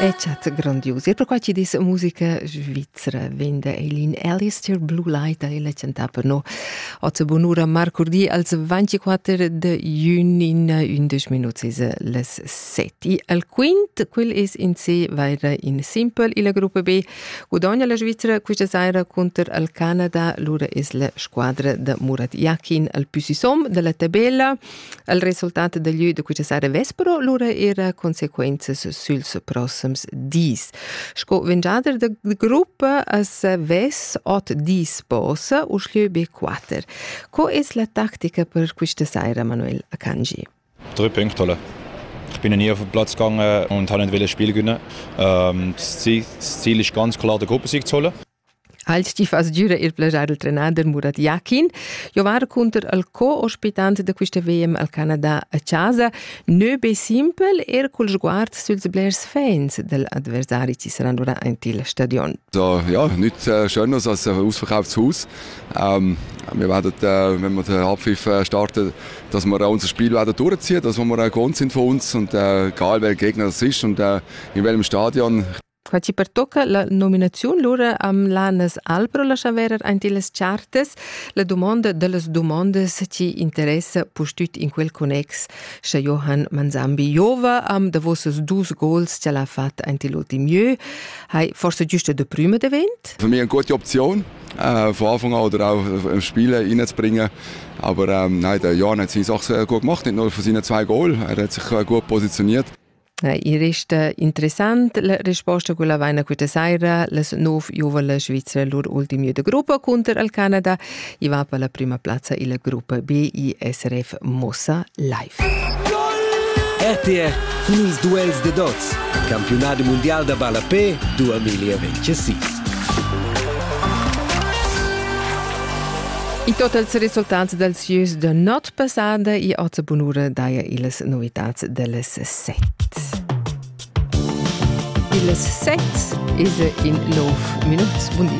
E chat grandius. E perquai ci dis musica svizzera vende Eileen Ellis tir Blue Light e la cantapa no. Oz bonura marcurdi als 24 de giugno in 11 minuti les 7. E al quint, quel es in se vaira in simple, il gruppo B guadagna la Svizzera questa saira contro al Canada, lura es la squadra da Murat Yakin al più sisom della tabella. Il resultat da lü da quista sera vespero lura era consequenzas süls prossims dis. Sco vengiader da gruppa as ves ot dis posa u schlieu be quatter. Co es la tactica per quista sera, Manuel Akanji? Drei Punktole. Ich bin nie auf den Platz gegangen und habe nicht wollen Spiel gewinnen. Ähm, das Ziel ist ganz klar, der Gruppe zu holen. Halt ti fas giura ir plagiar il trenader Murat Yakin. Jo var cunter al co-ospitant da quista VM al Canada a casa. Nö be simpel, er cul sguard süls blers fans del adversari ci saran ora in til stadion. So, ja, nichts äh, Schönes als äh, ausverkauftes Haus. Ähm, wir werden, äh, wenn wir den Halbpfiff äh, starten, dass wir äh, unser Spiel werden durchziehen, dass wir äh, gewohnt sind von uns und äh, egal wer Gegner das ist und äh, in welchem Stadion Qua ci pertocca la nominaziun lura am Lanas Albro la chaverer aint illas chartas, la dumonda dellas dumondas ci interessa pustüt in quel connex, scha Johann Manzambi Jova am davosas dus gols cha l'ha fat aint l'ultim jeu, hai forse giusta de prüma devent? Für mich eine gute Option, äh, von Anfang an oder auch im Spiel reinzubringen. Aber ähm, nein, der Jan hat seine Sache sehr gut gemacht, nicht nur von seinen zwei Goals. Er hat sich äh, gut positioniert. I resta interessant la risposta quella vaina questa saira las nov giuvale Svizra lur ultimi de gruppa counter al Canada i va per la prima plazza illa gruppa B i SRF Mossa live. RTR cun ils duels de dots campionat mondial da ballapé 2026 I totals resultats dalsieus de not passada i oza bunura daia illas novitats dellas sets. Ils sets is in nov minut bundi.